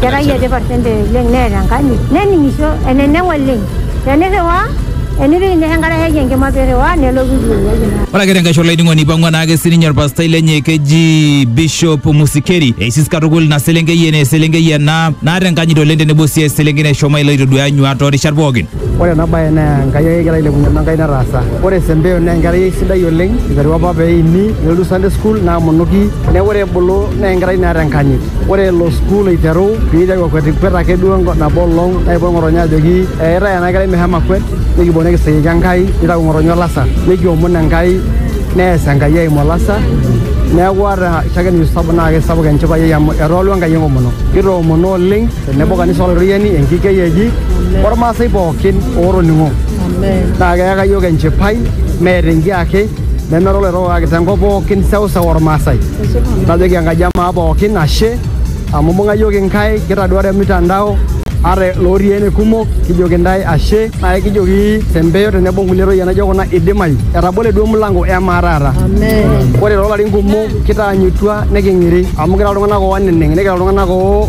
Kerai etipat sente oleng neeta enkanyit nening'isho eneneng oleng tenirriwaa enipik ine enkare heji enkima pirriwaa nelotu iwueji Ore ake tenkaisho olainining'oni eipang'ua naake sininye orpastai lenye keji Bishop Musikeri eisis katukul ina selenkei ene eselenkei ena naata enkanyit oleng tenebo sii eselenkei nashomo alo aitoduaya nyuaat toorishat pookin. Ore ena bae naa Enkai ake egira ailepunye amu Enkai nataasa. Ore Sempeo naa enkerai sidai oleng, eiterua apa pee eini nelotu Sunday school naamonoki neaku ore ebulu naa enkerai naata enkanyit. Ore elo sukuul aiteru pee eiteru akwetikwet ake duo nabo olong neipot ng'otonye ajoki eetai ena kerai meshomo akwet nikipuo nikisiriki Enkai neitayu ng'otonye olasa nikiomon Enkai neas Enkai eimu olasa. Neaku ata shakenu sapuk naa keisapuk enchipai ai amu etoolua Enkai enkomono. Kitoomono oleng. Tenebo kanisa olororiyani enkikei eji ormaasai pookin ootoning'o naa keyaka iyiook enchipai meeta enkiake nemera oloirrok kake tenkop pookin seuseu ormaasai. Najoki Enkaji e maa pookin ashe amu imbung'a iyiook inkaik kitaduaa te mtandao ata ilootii ene kumok kijoki intae ashe naa ekijoki te mpeyo tenebo o nkulie toyie naijo kuna eidimayu etabole duo emilango e maa taata. Ore too larin kumok kitaanyutua niking'iri amu kira iltung'anak ooneneng' nikira iltung'anak oo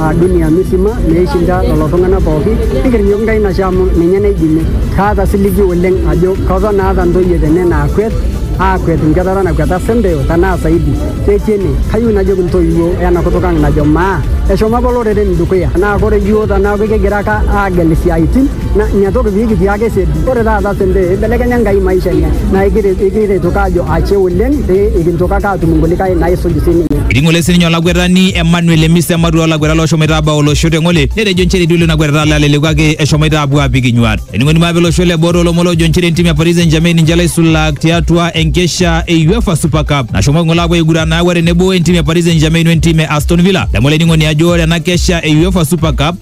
a dunia misima meishinda lelo tung'ana pooki, nikirrinyok Nkai nashe amu ninye naidimie. Kaata siligi oleng ajo keton aata ntoyie tene naakwet, aakwet nkwetata nakweta sempe o tenaa saidi. Ketii ene. Kayieu najoki ntoiwuo ena kutuk ang najo maa, eshomo apa loreren dukuya. Naa ore yiook tenaaku kigira ake aagel siaaitin, na ina toki pee kitiaka esedi. Ore taata sente eibelekenya Enkai maisha enye naa ikiretoka ajo ashe oleng pee ikintokaka aatum inkulikae naisuj sininye. Eting'ole sininye olakwetani Emmanuel Emisa ematua oolakweta looshomoita aabau olosho te ng'ole netejo nchere eitu elo ina kwetata alo aleleku kake eshomoita aapuo aapik inyuaat. Ening'oni mape olosho le boo toolomon loojo nchere entim e Paris St-Germain ninche laisulak tiatua enkesha e Uefa Super Cup nashomoki ng'ole aapuo aiguran naaku are tenebo entim e Paris St-Germain wentim e Aston Villa. Adamu olainining'oni ajo ore ena kesha e Uefa Super Cup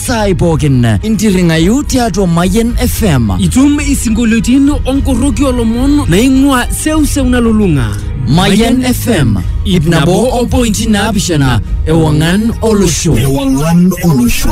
saai pookin intirring'ayu tiatua Mayian FM. Itum isinkolioitin onkorroki olomon naing'ua seuseu nalulung'a. Mayian FM ip nabo o pointi naapishana ewang'an olosho. Ewang'an olosho.